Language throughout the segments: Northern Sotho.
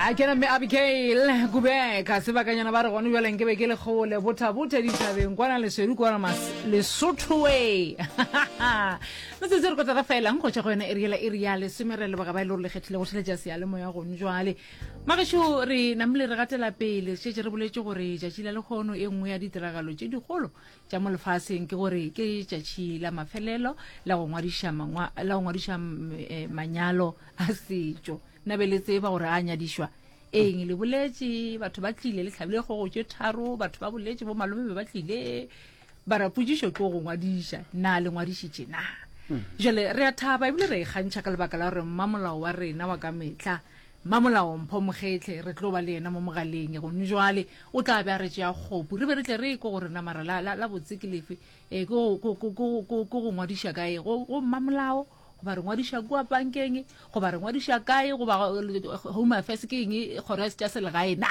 a kena mme abigail kubeka sebakanyana ba re gone bjaleng ke be ke le kgole bothabothe dithabeng kwana leswedu kwana mas lesothoe metsetse re kotla re felang go tšwa go yona eriela e rea lesome re leboga ba e le gore le kgethile go theletša sealemoya gone jwale magešo re namile re gatela pele šetse re boletše gore tšatši la lekgono e nngwe ya ditiragalo tše dikgolo tša mo lefaseng ke gore ke tšatši la mafelelo la go ngwadiša la go ngwadiša eh, manyalo a setšo nna be le tseba gore a nyadišwa eng le boletše batho ba tlile le tlhabile kgogo tše tharo batho ba boletše bo malome be ba tlile ba rapotsišo ke go ngwadiša na le ngwadišitše na hmm. jale re a thaba ebile re e kgantšha ka lebaka la gore mmamolao wa rena wa ka metlha Mmamolaompho Mokgetlhe re tlo ba le yena mo mogaleng gomme jwale o tla be a re tšea kgopu re be re tle re ekwe gore namara la, la, la botse ke lefe, ee, ke go, go, go, go, go, go ngwadiša kae go, go mmamolao goba re ngwadiša kua pankeng goba re ngwadiša kae goba Home Affairs ke eng kgoro ya tša selegae na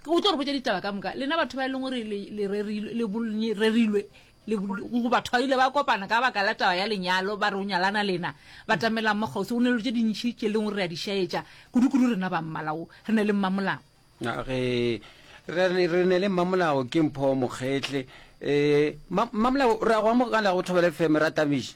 o tlo re botša ditaba ka moka lena batho ba e leng gore le, le, rerilwe, le, le rerilwe Le go batho ba ile ba kopana ka baka la taba ya lenyalo, ba re o nyalana lena, batamelang mo kgauswi, go ne le tše dintši tše leng re a di šaetša, kudu-kudu rena ba mmala wo, re ne le mmamolao. Na ge re re re ne le mmamolao ke mpho mokgetle, eh, ma, mmamolao, re a go amogela go thobele fm, ra tabiša.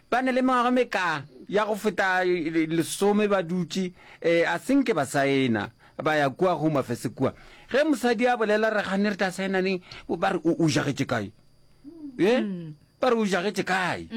Ba na le mengwaga meka ya go feta lesome ba dutše, a se nke ba saena, ba ya kua Home Affairs kua. Ge mosadi a bolela re gane re tla saena neng, ba re o jagetše kae? E? Ba re o jagetše kae?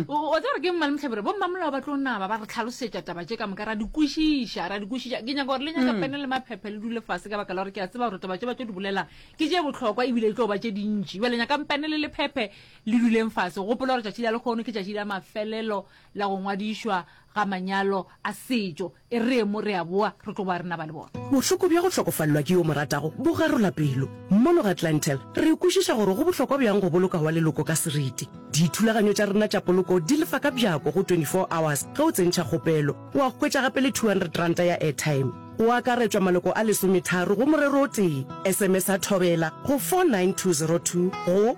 O tsa gore ke mmale mohlabira, bo mmamolao ba tlo naba ba re tlhalosetša taba tše ka moka, ra di kwešiša, ra di kwešiša. Ke nyaka gore le nyaka pene le maphephe le dule fase ka baka la gore ke a tseba gore taba tše ba tlo di bolelang ke tše bohlokwa ebile e tlo ba tše dintši. Bjale nyakang pene le lephephe Le duleng fase. Gopola gore tšatši la lekgono ke tšatši la mafelelo la go ngwadišwa ga manyalo a setšo. E re mo re a boa, re tlo boa re naba le bona. Bohloko bja go hlokofalelwa ke yo mo ratago bo garola pelo. Mono ga Clientele, re kwešiša gore go bohlokwa bjang go boloka wa leloko ka seriti. Dithulaganyo tša rena tša poloko di lefa ka bjako go 24 hours ge o tsentšha kgopelo. O a hwetša gape le R200 ya airtime. O akaretšwa maloko a lesometharo go morero o tee. SMS-a Thobela go 49202 go.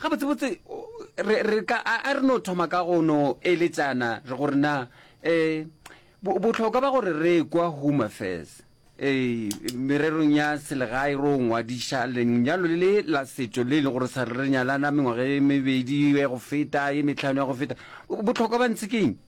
Gabotsebotse, re, re ka, a, a re no thoma ka go no eletšana re gore na, eh, bo, bohlokwa ba gore re ekwa Home Affairs, eh, mererong ya selegae ro ngwadiša lenyalo le le la setšo le e le gore sa re re nyalana mengwaga e mebedi ya go feta, e metlhano ya go feta. Bohlokwa ba ntse keng?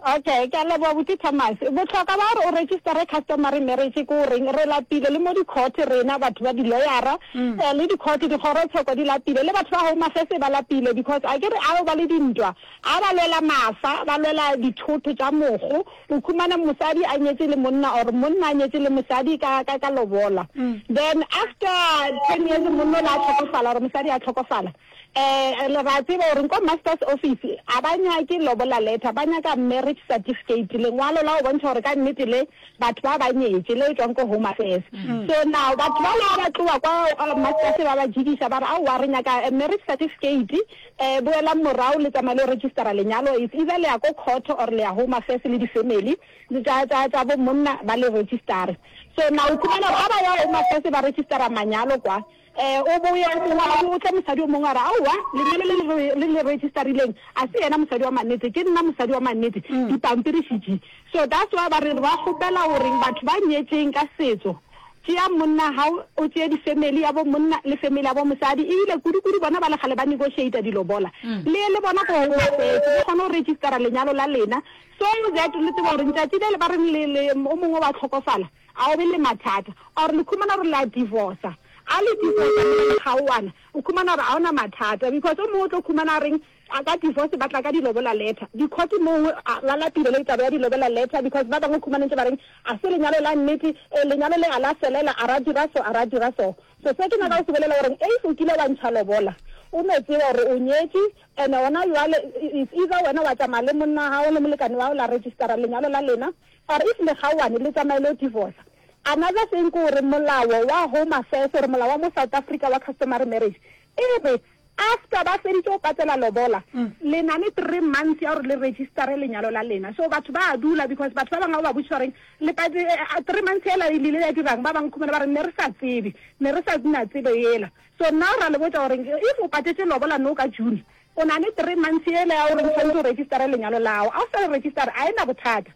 Okay, ke a leboga Buti Thomas. Bohlokwa ba gore o registere customary marriage ke o reng? Re lapile le mo di-court rena batho ba di-lawyer-a, eh, le di-court, dikgorotshoko di lapile, le batho ba Home Affairs ba lapile because a ke re ao ba le dintwa, a ba lwela mafa, ba lwela dithotho tša mogo, o khumane mosadi a nyetše le monna or monna a nyetše le mosadi ka, ka, ka lobola. Then after ten years monna o la tlhokofala or mosadi a tlhokofala, Ee, le ra tseba gore ko master's office a ba nyake lobola letter, ba nyaka marriage certificate, lengwalo la go bontšha gore ka nnete le batho ba ba nyetše, le tšwang ko home affairs. So now batho ba la ba tloa kwa uh, master's ba ba jidiša ba re aowa re nyaka a marriage certificate, eh, boelang morao le tsamaya le registera lenyalo, it's either le ya ko court or le ya home affairs le di-family tsa tsa tsa bo monna ba le registere. So now o khumana gore a ba ya home affairs ba registera manyalo kwa, Ee, o bo o ya o mongwe, a bo o tle mosadi o mongwe a re, Aowa, lengwalo le le re, le le registerileng, a se yena mosadi wa mannete. Ke nna mosadi wa mannete, dipampiri še di. So that's why ba re ba kgopela gore batho ba nyetšeng ka setso, tšea monna wa gago, o tšee di-family ya bo monna le family ya bo mosadi. Ebile kudu-kudu bona ba le kgale ba negotiator dilobola, le le bona ko Home Affairs, le kgone go registera lenyalo la lena, so that le tsebe gore letšatši le le ba reng le, le, o mongwe wa hlokofala, A o be le mathata? Or le khumana gore la divorca? A le divorca mola le kgaoana, o khumana gore a ona mathata because o mongwe o tlo khumana a reng a ka divorce ba tla ka dilobola letter di court mongwe a la lapile le taba ya dilobola letter because ba bangwe o khumana ntse ba reng a se lenyalo la nnete e lenyalo le a la felela a ra dira so a ra dira so so se ke nyaka go se bolela gore if o kile wa ntsha lobola o no tseba gore o nyetše and ona yoale is either wena wa tsamaya le monna wa gago le molekane wa go la registera lenyalo la lena Or if le kgaoane le tsamaye lo divorca. Another thing ke gore molao wa home affairs or molao wa mo South Africa wa customary marriage e re after ba feditše go patela lobola le na le three months ya gore le registare lenyalo la lena. So batho ba a dula because batho ba bangwe ga o ba botšiša gore le pate a three months yela e lile ya dirang ba bangwe khumana ba re ne re sa tsebe ne re sa na tsebo yela. So now ra le botša gore if o patetše lobola now ka June O na le three months yela ya gore o tshwanetse o registere lenyalo la gago. Ga o sa le registere, ga e na bothata.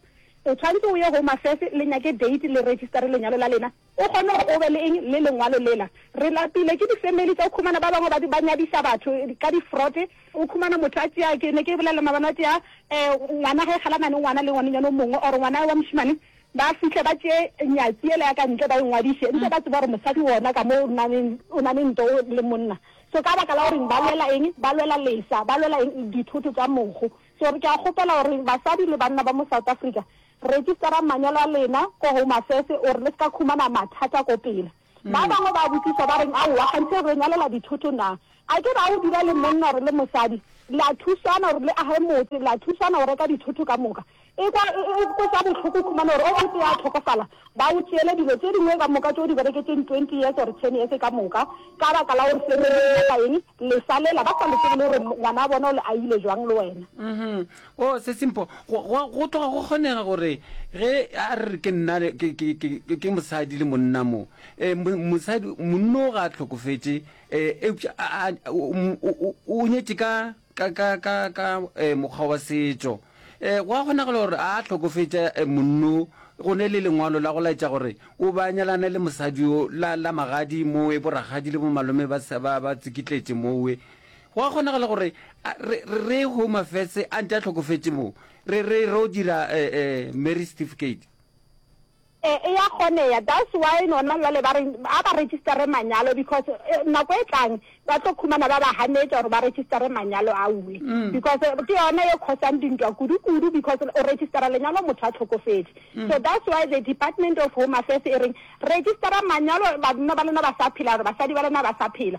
O tshwanetse o ye Home Affairs le nyake date le registere lenyalo la lena, o kgone gore o be le eng, le lengwalo lela. Re lapile ke di-family tsa, o khumana ba bangwe ba nyadiša batho ka di-fraud. O khumana motho a tšea, ke ne ke bolela maabane, a tšea ngwana ge kgalana le ngwana le ngwanenyane o mongwe or ngwana wa mošemane, Ba fihle ba tšee nyatsi yela ya ka ntle ba e ngwadiše, eupša ba tseba gore mosadi wona ka mo o na le, o na le ntwa o le monna. So ka baka la goreng ba lwela eng? Ba lwela lesa, ba lwela eng? Dithoto tša mogo. So re ke a kgopela gore basadi le banna ba mo South Africa, register-ang manyalo a lena ko Home Affairs gore le se ka khumana mathata ko pele. Ba bangwe ba botšiša ba reng, Aowa, kganthe re nyalela dithoto na? A ke ra o dira le monna or le mosadi, la thusana or le age motse, la thusana go reka dithoto ka moka. Ekwa e kweša bohloko go khumana gore o motee a hlokofala, ba o tšeele dilo tše dingwe ka moka tše o di bereketšeng twenty years or ten years ka moka, ka baka la gore family e nyaka eng, lesa lela ba sa le tsebe le gore ngwana wa bona o le aile jwang le wena. Oh, se Simpho, go, go, go tloga go kgonega gore ge a re re ke nna le- ke, ke, ke, ke- ke mosadi le monna mo, eh, mo- mosadi, monna o ga a hlokofetše, eh, eupša a, a, o, o, o, o nyetše ka, ka, ka, ka, ka eh, mokgwa wa setšo. Eh, go a kgonagala gore a hlokofetša eh, monno go ne le lengwalo la go laetša gore o ba nyalane le mosadi yo la, la magadi mowe borakgadi le bomalome ba, sa- ba, ba tsikitletše mowe Go a kgonagala gore a, re, re, re Home Affairs a ntše a hlokofetše moo, re, re ro dira eh, eh, marriage certificate. E, e ya kgoneya. That's why nona jwale ba re a ba registare manyalo because e, nako e tlang ba tlo khumana ba ba hanetša gore ba registare manyalo a uwe because ke yona e khosang dintwa kudu-kudu because o registara lenyalo motho a tlhokofetše. So that's why the Department of Home Affairs e reng registara manyalo banna ba lena ba sa phela or basadi ba lena ba sa phela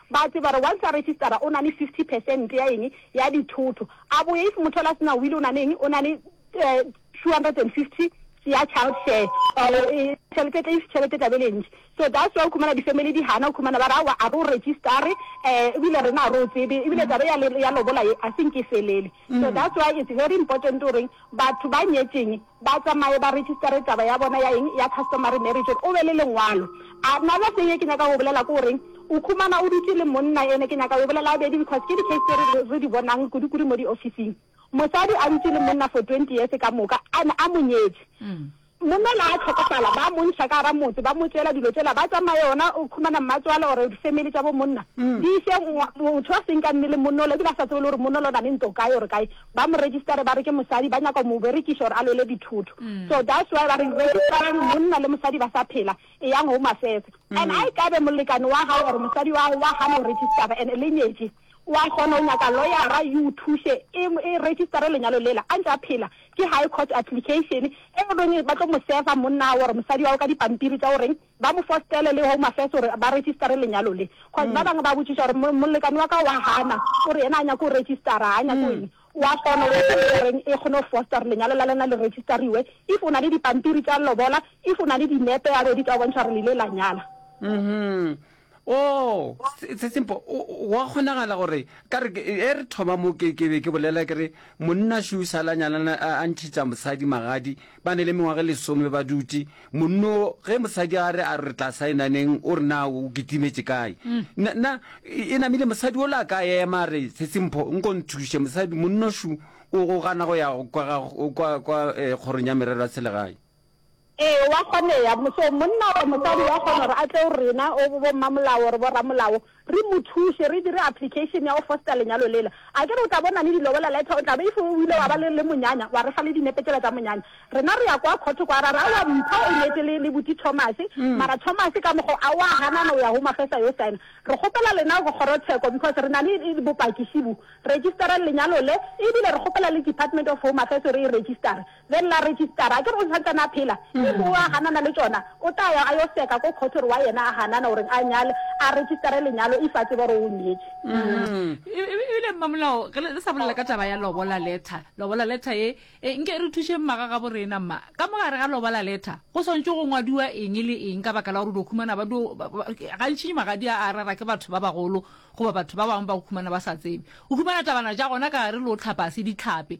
Ba tseba gore once a registera o na le fifty percent ya eng ya dithoto. A boye if motho yola a sena will o na le eng, o na le two hundred and fifty ya child share or tšhelete tle if tšhelete e tla be e le ntši. So that's why o khumana di family di hana, o khumana ba re aowa a re o registare ebile rena a re o tsebe ebile taba ya lobola ye a se nke e felele. So that's why it's very important o reng Batho ba nyetšeng ba tsamaye ba registare taba ya bona ya eng? Ya customary marriage gore o be le lengwalo. Another thing e ke nyaka go bolela ke goreng o khumana o dutše le monna ene ke nyaka go bolela abedi because ke di case tse re re di bonang kudu kudu mo di officing. Mosadi a dutše le monna for twenty years ka moka and a mo nyetše. Monna la a hlokofala ba mo iša ka gara motse ba mo tšeela dilo tšela ba tsamaye gona o khumana mmatswale or family tša bo monna di iše motho a seng ka nne le monna ola ebile a sa tsebe le gore monna ola o na le nto kae or kae ba mo registare ba re ke mosadi ba nyaka mo berekiša or a lwele dithotho so that's why ba re registarang monna le mosadi ba sa phela eyang home affairs and a e kabe molekane wa gago or mosadi wa gago wa gana go registara and le nyetše O a kgona go nyaka loyara yo o thuše e e registare lenyalo lela a ntše a phela. Ke High Court Application e e reng ba tlo mo serva monna wa or mosadi wa gagwe ka dipampiri tša go reng ba mo fostele le Home Affairs gore ba registare lenyalo le. Cause ba bangwe ba botšiša gore mo molekane wa ka o a gana, o re yena a nyake go registara, ga a nyake go eng. O a kgona go ya ko e reng e kgone go foster gore lenyalo la lena le registariwe. If o na le dipampiri tša lobola, if o na le dinepe gabedi tša go bontšha gore le ile la nyala. o sesimpo wa kgonagala gore ka re e re thoma mo ke be ke bolela ke re monna shu sa la nyalana a ntšhitša mosadi magadi ba ne le mengwaga e lesome ba dutše monno ge mosadi a re a re tla saenaneng o re na o kitimetše kae nna e namile mosadi o la ka ema a re sesimpho nko nthuše mosadi monno shu o gana go ya kwa kgorong ya merero ya selegae Ee, wa kgonea. So, monna or mosadi wa kgona gore a tle go rena, o bommamolao or borramolao, re mo thuše, re dire application ya go foster lenyalo lela. Akere o tla bo o na le dilobola letter, o tla be, if o ile wa ba le, le monyanya, wa re fa le dinepe tsela tsa monyanya. Rena re ya kwa khotho kwa, ra re, aowa, mpho o nyetše le, le Buti Thomas, mara Thomas ka mokgwa o, a o a ganana, o ya Home Affairs a yo signer. Re kgopela lena kgorotsheko, because re na le bopaki, šibu, register-reng lenyalo le, ebile re kgopela le Department of Home Affairs gore e register-re. Ge nna registara a ke re o santsane a phela, ke moo a ganana le tšona, o tla ya a yo seka ko court gore wa yena a ganana gore a nyale, a registare lenyalo if a tseba gore o nyetše. E, Ebile mmamolao ge le le sa bolela ka taba ya lobola letter, lobola letter ye e, nke e re thušeng mma ga gabo rena. Mma, ka mo gare ga lobola letter go swantšwe go ngwadiwa eng le eng ka baka la gore o do khumana ba do, ba, ba, gantši magadi a a rera ke batho ba bagolo goba batho ba bangwe ba o khumana ba sa tsebe. O khumana tabana tša gona ka gare le o tlhapase ditlhape,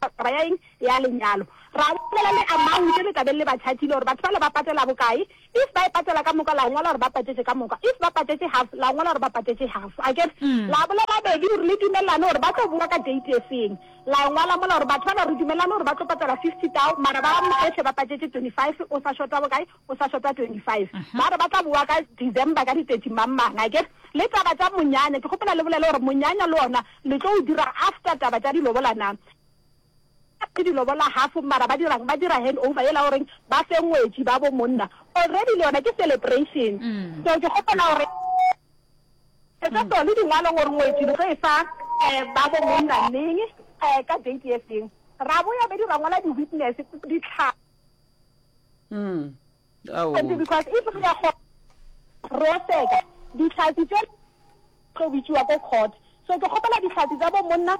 Taba ya eng? Ya lenyalo. Ra bolela le amount e le tla beng le ba chargile gore batho bale ba patela bokae. If ba e patela ka moka la ngwala gore ba patetše ka moka. If ba patetše half la ngwala gore ba patetše half. Akere? La bolela bedi gore le dumelelane gore ba tlo boa ka date e feng. La e ngwala mola gore batho bana re dumelelane gore ba tlo patela fifty thou mara ba bohle ba patetše twenty five o sa shota bokae? o sa šota 25 ba re ba tla boa ka December ka di 30 mang mang a ke re le taba tša monyanya ke kgopela le bolele gore monyanya le ona le tlo o dira after taba tša dilobola na ke dilobola half mara ba dirang ba dira hand over yela o reng ba fe ngwetši ba bo monna already le yona ke celebration mm. so ke kgopela gore etsa mm. tsone dingwalo gore ngwetši le tlo e fa um ba bo monna neng um ka date e feng ra boya be di rangwala di-witness ditlhaa Mm. Ao. Maybe because if re ka go roseka ditlhatsi tse tlo bitšiwa ko court so ke kgopela ditlhatsi tsa bo monna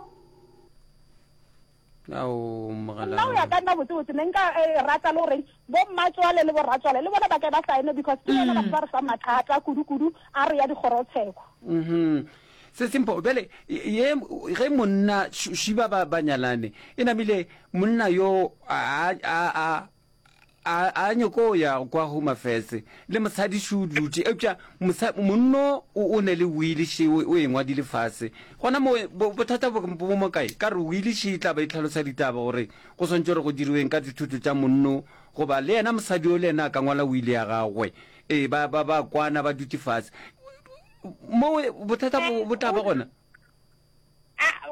Ao mogala. nna o ya ka nna botsebotse ne nka eh, rata le goreng bo mmatswale le borratswale le bona ba ke ba saene because ke bona batho ba re fa mathata kudu-kudu a re ya dikgorotsheko Mhm. Se simple. Bjale ye ge monna Shiba ba ba nyalane, e namile monna yo a a a a a nyoko ya kwa Home Affairs le mosadi she o dutše, eupša mosa monno o o ne le wili she o o e ngwadile fase. Gona mo bo bothata bo bo mo kae? Ka re wili she e tla ba e tlhalosa ditaba gore go swantšwe gore go diriweng ka dithoto tša monno goba le yena mosadi yo le yena a ka ngwala wili ya gagwe. Ee ba ba ba kwana ba dutše fase. mo bothata bo tla ba gona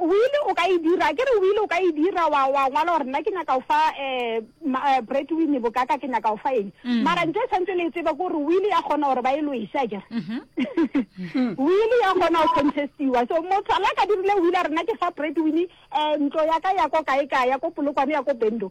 wile o ka e dira ke re wile o ka e dira wa wa ngwala gore nna ke nyaka go fa um bread wine bokaka ke nyaka go fa eng mm. mara nto e tshwanetse le e tsebe kore wile ya kgona gore ba e loise a kere mhm. wile ya kgona go contestiwa so motho la ka dirile wile a rena ke fa bread wine um ntlo ya ka ya ko kae kae ya ko polokwane ya ko bendo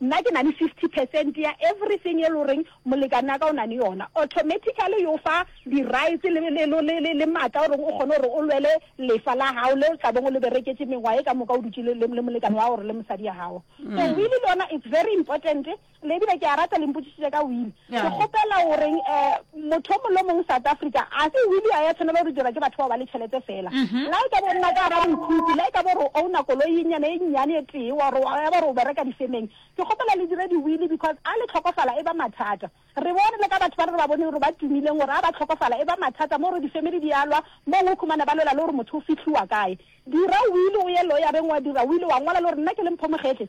Nna ke na le fifty percent ya everything e le goreng molekane wa ka o na le yona, automatically yo fa di-rights le, le, le, le, le, le maatla gore o kgone gore o lwele lefa la gago le o tla beng o le bereketše mengwaga e ka moka o dutše le, le, le molekane wa gago gore le mosadi ya gago. So will le yona it's very important, le ebile ke a rata le mpotšišitše ka will. Ke kgopela o reng um motho o mongwe le o mongwe South Africa, a se will ya ya tshwanela gore dirwa ke batho bao ba le tšhelete fela. La e ka bo nna ka gara mokhukhu, la e ka bo re o owner koloi e nnyane e nnyane e tee, wa gore ya ba re o bereka difemeng, ke kgopela le dire di will because a le tlhokofala e ba mathata. Re bone le ka batho ba re ba boneng gore ba tumileng gore a ba tlhokofala e ba mathata mo gore difamily di a lwa, mong o khumane ba lwela le gore motho o fihliwa kae. Dira will o ye lawyer-reng wa dira will wa ngola le gore nna ke le Mpho Mogetli,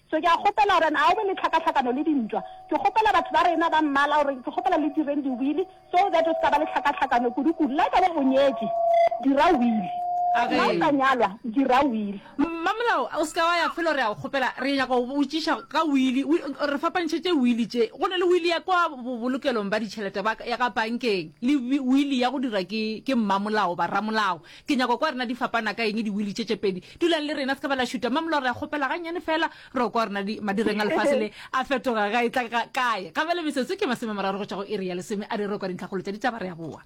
So ke a kgopela gore na o be le tlhakatlhakano le dintwa. Ke kgopela batho ba rena ba mmala gore ke kgopela le direng diwili so that o se ka ba le tlhakatlhakano kudu-kudu. La e ka ba o nyetše, dira wili. A ge. La o sa nyalwa, dira wili. Mmamolao, o se ka wa ya felo re a o kgopela. Re nyaka go go botšiša ka wili. Wi, re fapantšhetše wili tše. Go na le wili ya kwa bobolokelong ba ditšhelete ba ka, ya ka bankeng, le wi, wili ya go dira ke, ke mmamolao, ba ramolao. Ke nyaka kwa rena di fapana ka eng diwili tše tše pedi? Dulang le rena, se ka ba la šuta. Mme Molora, kgopela gannyane fela, re kwa rena di, madireng a lefase le a fetoga ga e tla ga, kae. Gabjale metsotso ke masome a mararo go tšwa go iri ya lesome a re re kwa dintlhakgolo tša ditaba re a boa.